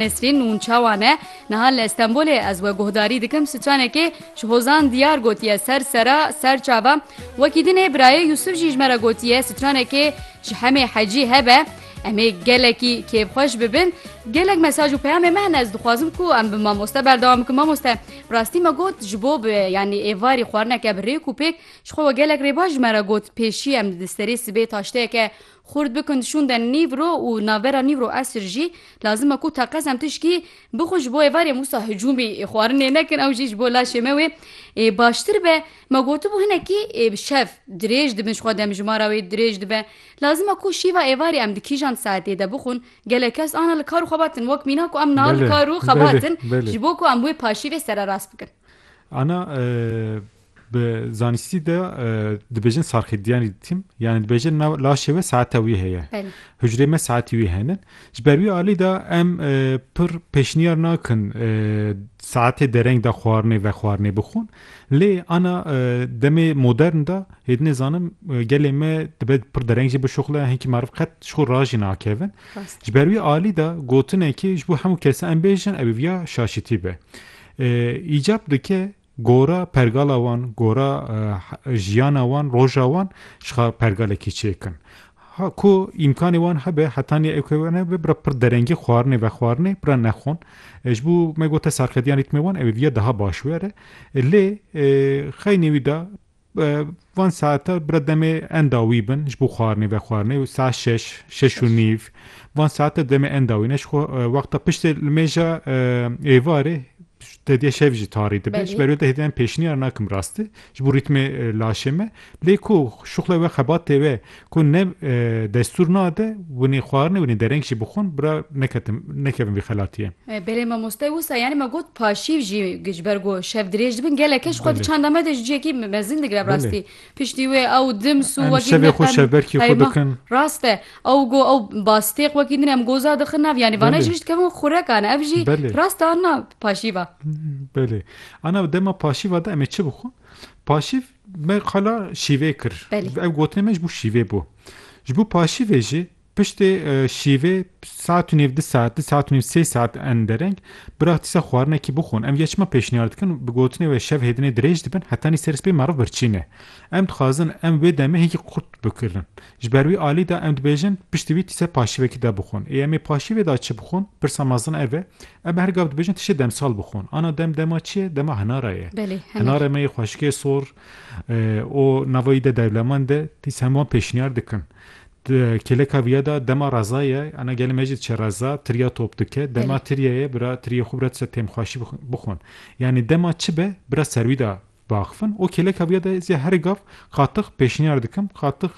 Nesrîn Nûnçawan e, Niha li Stenbolê ez we guhdarî dikim stranekê ji hozan diyar gotiye ser sera ser çava. Wekî din ê birayê Yûsif jî ji me re gotiye stranekê ji hemê hecî hebe. Em ê gelekî kêfxweş bibin. Gelek mesaj û peyamên me hene ez dixwazim ku em bi mamoste berdewam bikim. Mamoste bi rastî me got ji bo bi yanî êvarî xwarineke bi rêk û pêk ji xwe we gelek rêbaş ji me re got pêşî em li di serê sibê taşteyeke Xurt bikin şûnde nîv ro û navbera nîv ro esr jî lazim e ku teqez em tişkî bixwin ji bo êvarê Mûsa hicûmî ê xwarinê nekin ew jî ji bo laşê me wê ê baştir be. Me gotibû hinekî ê bi şev dirêj dibin ji xwe demjimara wê dirêj dibe. Lazim e ku şîva êvarê em di kîjan saetê de bixwin gelek kes ana li kar û xebatin wek mîna ku em niha li Belê, kar û belê, xebatin belê. ji bo ku em wê paşîvê sererast bikin. Ana Bi zanistî de dibêjin sarxîdyanî dîtîm yanî dibêjin nav laşê we saete wî heye. Hucrê me saetî wî henin. Ji ber wî alî de em pir pêşniyar nakin saetê dereng de xwarinê ve xwarinê bixwin. Lê ana demê modern de hêdinê zanim gelê me dibe pir dereng jî bişuxle hinkî meriv qet ji xwe rajî nakevin. Ji ber wî alî de gotinekê ji bo hemû kese em bêjin ew viya şaşîtî be. Îcab dike Gora pergala wan, gora jiyana wan, roja wan jixwe pergalekî çêk in. Ku îmkanê wan hebe heta nê ewke wan hebe bira pir derengî xwarinê vexwarinê bira nexwon. Ji bo me gote serxediyan rîtmê wan ew ê viya daha baş were. Lê xeynê wî de Van saetan bira demê enda wî bin ji bo xwarinê vexwarinê û saet şeş, şeş û nîv van saetan demê enda wî ne ji xwe wexta piştê li mêja êvarê te diye şev jî tarî dibe ji ber wê te hêdî em pêşniyar nakim rastî ji bo rîtmê laşê me lê ku şuxlê we xebatê we Ku ne destûr nade winê xwarinê winê dereng jî bixwin bira neketim nekevin vî xelatiyê. Belê mamoste wisa yanî me got paşîv jî ji ber ku şev dirêj dibin gelekê ji xwe di çanda me de ji ciyekî mezin digire bi rastî piştî wê ew dims û wekî din heyma rast e ew got ew bastêq wekî din em goza dixin nav yanî vane ji vir dikevin xurekan ev jî rast e ana paşîva. Belê ana dema paşîva de em ê çi bixwin paşîv Me qala şîvê kir. Ev gotinê me ji bo şîvê bû. Ji bo paşîvê jî piştê şîvê saet û nêv du saet du saet û nêv sê saet en dereng biraxtîsa xwarinekî bixwin. Em ya çima pêşniyar dikin bi gotinê wê şev hêdinê dirêj dibin heta nî ser spê meriv birçîne. Em dixwazin em wê demê hêkî qurt bikirin. Ji ber wî alî da em dibêjin piştî wî tîse paşivekî de bixwin. Ê em ê paşivê da çi bixwin? Pirsa mezin ev e. Em her gav dibêjin tiştê demsal bixwin. Ana dem dema çi ye? Dema hinara ye. Belê, hinar. Hinarê me yê xweşikê sor û nava wî de dewlemend e. Tîs hemû wan pêşniyar dikin. Di kêleka vîya da dema reza ye. Ana gelê me jî diçe reza, tirya top dike. Dema Belê. tirya ye, bira tiryê xwe bira tişe têmxweşî bixwin. Yanî dema çi be, bira ser wî da biaxivin û kêleka vîya de zî herî gav qatix pêşniyar dikim qatix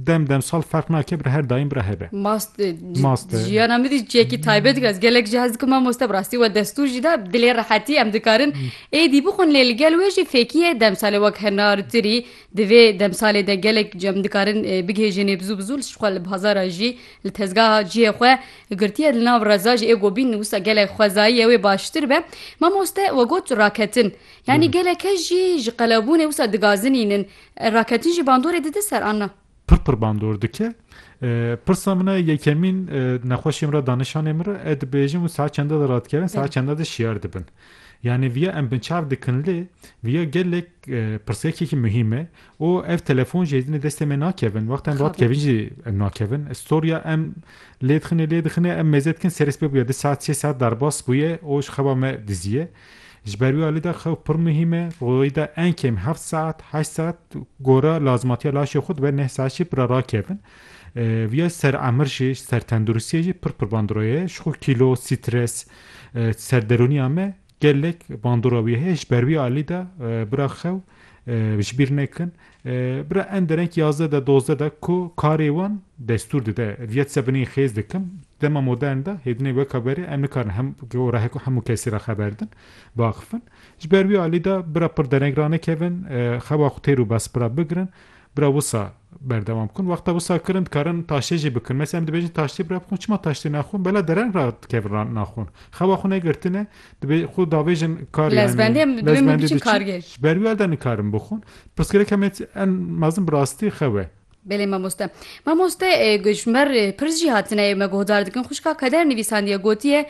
dem demsal ferq nake bi ra her daîm bi ra hebe. Maste Maste jiyana min zî çiyekî taybet dike ez gelek jî hez dikim mamoste bi rastî we destûr jî da dilê rehetî em dikarin êdî bixwin lê li gel wê jî fêkîye demsalê wek henar tirî di vê demsalê de gelek jî em dikarin bigihêjin ê bizû bizû ji xwe li bazara jî li tezgaha cihê xwe Li girtiya li nav reza jî ê gobîn wisa gelek xwezayî ye wê baştir be. Mamoste we got raketin. Yanî geleke jî ji qelebûnê wisa digazinînin. Raketin jî bandorê dide ser an na? Pir pir bandor dike. Pirsa min e yekemîn nexweşiyê min re danişanê min re e dibêjin û saet çende de radikevin saet çende de şiyar dibin. Yanî viya em binçav dikin lê viya gelek pirsgekekî muhîm e Û ev telefon jî êdî destê me nakevin. Wexta em bi we dikevin jî em nakevin. Storya em lê dixine lê dixine em mêze dikin serê sibê bûye du saet sê saet derbas bûye û ji xeba me diziye. Ji ber wî alî de xew pir muhîm e. Rojê de enkêm heft saet heşt saet gora lazimatiya laşê xwe dibe neh saet jî bi re rakevin. Viya ser emir jî ser tenduristiyê jî pir pir bandorê ye. Ji xwe kîlo, stres, serderûniya me Gelek bandora wî heye ji ber wî alî de bira xew ji bîr nekin. Bira em dereng yazdeh de dozdeh de ku karê wan destûr dide viyet se binê xêz dikim. Dema modern de hêdinê weka berê em nikarin hem gora heko hemû kesî re xeber din biaxifin. Ji ber wî alî de bira pir dereng ranekevin xewa xwe têr û bes bira bigirin. Bira wisa berdewam bikun. Wexta wisa kirin dikarin taştê jî bikin. Mesela em dibêjin taştê bira bixwin çima taştê naxwin bela deren re dikevin re naxwin. Xewa xwe negirtine dibê xwe davêjin kar yanî Lezbendê em dibê min lezbendê biçin diçin kargê. ji ber wî erde nikarin bixwin. Pirsgirêk heme en mezin bi rastî xew e. Belê mamoste. Mamoste ji ber pirs jî hatine me guhdar dikin xwişka Kader nivîsandiye gotiye